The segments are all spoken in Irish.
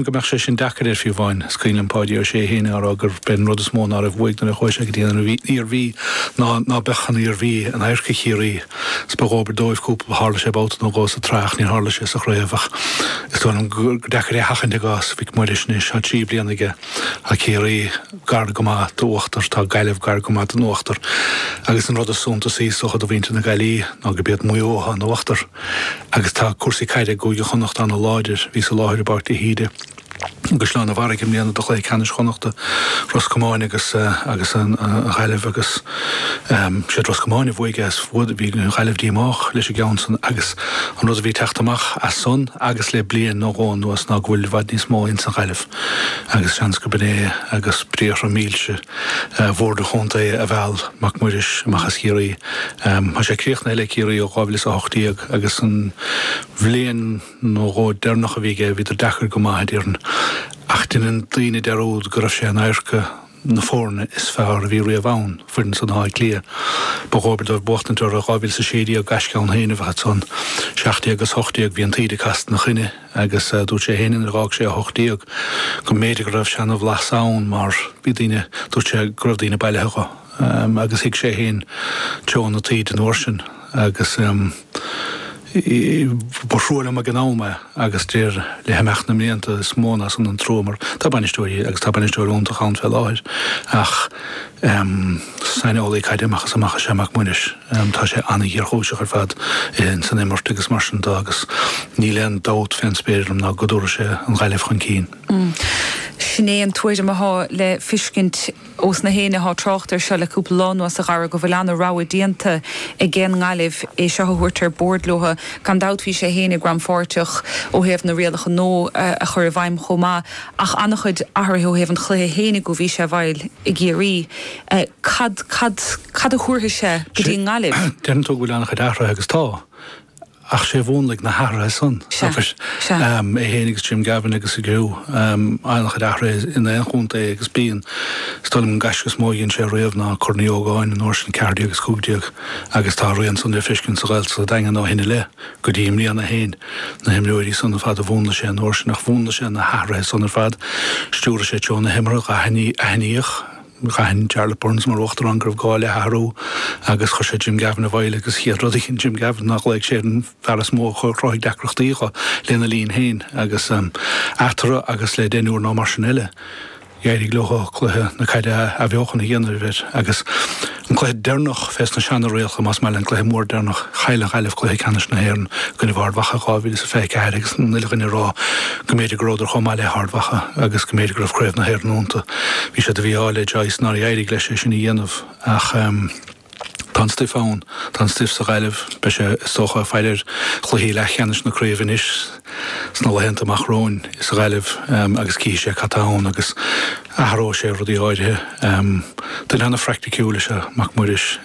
go mbeadh sé sin deacair air fiú amháin. Is cuimhin liom Páidí Ó Sé féin a' rá gurbh é an rud is mó ná raibh uaidh nuair a chuaigh sé go dtí an Iarmhí ná ná beadh an Iarmhí in adharca Chiarraí. Is ba dhóbair dóibh cúpla, tharla sé babhta nó dhó sa tsraith ach níor tharla sé sa chraobh ach is dóigh liom gur deacair é a sheachaint i gcás Mhic Muiris anois. Tá trí bliana aige. Tá Ciarraí gar go maith d'uachtar, tá Gaillimh gar go maith don uachtar agus an rud is suntasaí is dócha do mhuintir na Gaillí ná gurb iad Maigh Eo atá in uachtar. Agus tá cúrsaí caide i gCúige Chonnacht an-láidir. Bhíos i láthair i bPáirc de hÍde i gCaisleán an Bharraigh i mbliana do chluiche ceannais Chonnachta, Ros Comáin agus an Ghaillimh agus siad Ros Comáin a bhuaigh é is bhí an Ghaillimh díomách leis an gceann san agus an rud a bhí ag teacht amach as san agus le bliain nó dhó anuas ná go bhfuil i bhfad níos mó ins an Ghaillimh agus seans gurb in é agus briathra mílse Bhord an Chontae a mheall Mac Muiris amach as Ciarraí. Tá sé críochnaithe le Ciarraí ó 2018 agus an bhliain nó dhó deireanach a bhí aige, bhíodar deacair go maith, a déarfainn, ach deineann daoine dearúd go raibh sé in adharca na foirne is fearr a bhí riamh ann, foireann san Átha Cliath. Ba dhóbair dóibh buachtaint orthu i 2016, gaisce ann féin a bheadh ansan. 17-18 bhí an taoide casta ina choinne. agus dúirt sé féin nuair a dh'fhág sé 18 go mb'fhéidir go raibh seana-bhlas ann mar bhí daoine, dúirt sé go raibh daoine bailithe dho agus thuig sé féin treo na taoide an uair sin agus ba thrua liom ag an am é agus deir le himeacht na mblianta is mó ná san an trua mar tá bainisteoirí agus tá bainisteoir iontach ann fé láthair ach um saineolaí caide amach is amach is ea Mac Muiris. um Tá sé an-ghéarchúiseach ar fad ins an imirt agus mar sin de agus níl aon dabht fén spéir orm ná go dtabharfaidh sé an Ghaillimh chun cinn. Sin é an tuairim athá le fiscint ós na héinne athá trácht air seo le cúpla lá anuas a Dhara go bhfuil an-rogha déanta ag an nGaillimh é seo a thabhairt ar bórd leothu. Gan dabht bhí sé féin ag rannpháirteach ó thaobh na rialacha nua a chur i bhfeidhm chomh maith. ach an-chuid athraithe ó thaobh an chluiche fhéinig ó bhí sé i bhfeighil i gCiarraí. Cad, cad, cad a thabharfaidh sé go dtí an nGaillimh? Deireann tú go bhfuil an-chuid athraithe agus tá, ach sé a mhúnlaigh na hathraithe san, sea, sea. é fhéinig is Jim Gavin agus a gcriú, an-chuid athraithe in aon chontae agus bíonn. Is dóigh liom an gaisce is mó a dhein sé riamh ná Corn Uí Ógáin, an uair sin ceathair déag is cúig déag agus tá a rian san le feiscint sa Ghaeltacht sa Daingean ó shin i leith. Go dtí i mbliana féin, na himreoirí san ar fad a mhúnlaigh sé, an uair sin ach mhúnlaigh sé na hathruithe san ar fad, stiúraigh sé treo na himeartha, aithníodh, d'aithin Jarlath Burns mar uachtarán go raibh gá le hathrú agus chuir sé Jim Gavin i bhfeighil agus chéad rud a dhein Jim Gavin ná ghlaoigh sé ar an bhfear is mó a chruthaigh deacrachtaí dho lena linn féin agus eatarthu agus le deichniúr nó mar sin eile. D'éirigh leo cluiche na caide a athbheochan a dhéanamh air agus an cluiche deireanach fés na seanrialta, más maith linn, an cluiche mór deireanach. Chaill an Ghaillimh cluiche ceannais na hÉireann i gcoinnibh Ard Mhacha 2024 agus an uile dhuine ag rá go mb'fhéidir go rabhadar chomh maith le hArd Mhacha agus go mb'fhéidir go raibh Craobh na hÉireann ionta. Bhí sé de mhí-ádh le Joyce nár éirigh leis é sin a dhéanamh ach, Tá an stuif ann. Tá an stuif sa Ghaillimh. Beidh sé, is dócha, ag faire ar chluichí leathcheannais na craoibhe anois sna laethanta amach romhainn sa Ghaillimh agus cífidh sé cad tá ann agus athróidh sé rudaí áirithe. Duine an-phraicticiúil is ea Mac Muiris.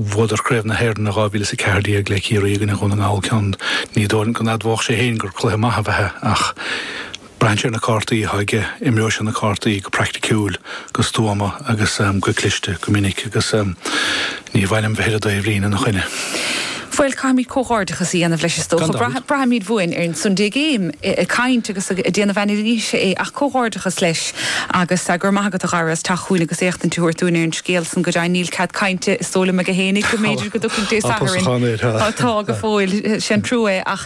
Bhuadar Craobh na hÉireann i 2014 le Ciarraí i gcoinne Dhún na nGall ceann. Ní dóigh liom go n-admhódh sé féin gur cluiche maith ab ea é ach, Braitheann sé ar na cártaí atá aige, imreoidh sé na cártaí go praiticiúil, go stuama agus go cliste go minic agus ní mhaith liom bheith ar an dtaobhlíne ina choinne. Bhuel, caithfimid comhghairdeachas a dhéanamh leis is dócha. Braithfimid uainn ar an Sunday Game ag caint agus ag déanamh anailíse é ach comhghairdeachas leis agus go raibh maith agat a Dhara as teacht chugainn agus éachtaint a thabhairt dúinn ar an scéal san. Go deimhin níl cead cainte is dóigh liom aige féinig go mb'fhéidir go dtiocfaidh Dé Sathairn. Tá go fóill, sin trua é.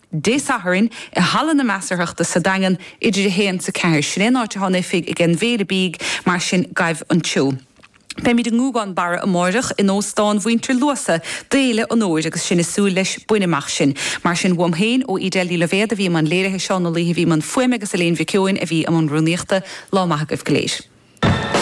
Dé Sathairn, i Halla na Measarthachta sa Daingean, idir 1 's 4. Sin é an áit atá an oifig ag an bhFéile Bídh, mar sin gabh anseo. Beimid i nGúgán Barra amáireach, in Óstán Mhuintir Luasa, d'Fhéile an Fhómhair, agus sinn ag súil leis bain amach sinn. Mar sin, uaim féin, ó Edel Ní Loibhéad, a bhí i mbun léirithe Seán Ó Laoithe, bhí i mbun fuaime, agus Elaine Mhic Eoin, a bhí i mbun rúnaíochta, lá maith agaibh go léir.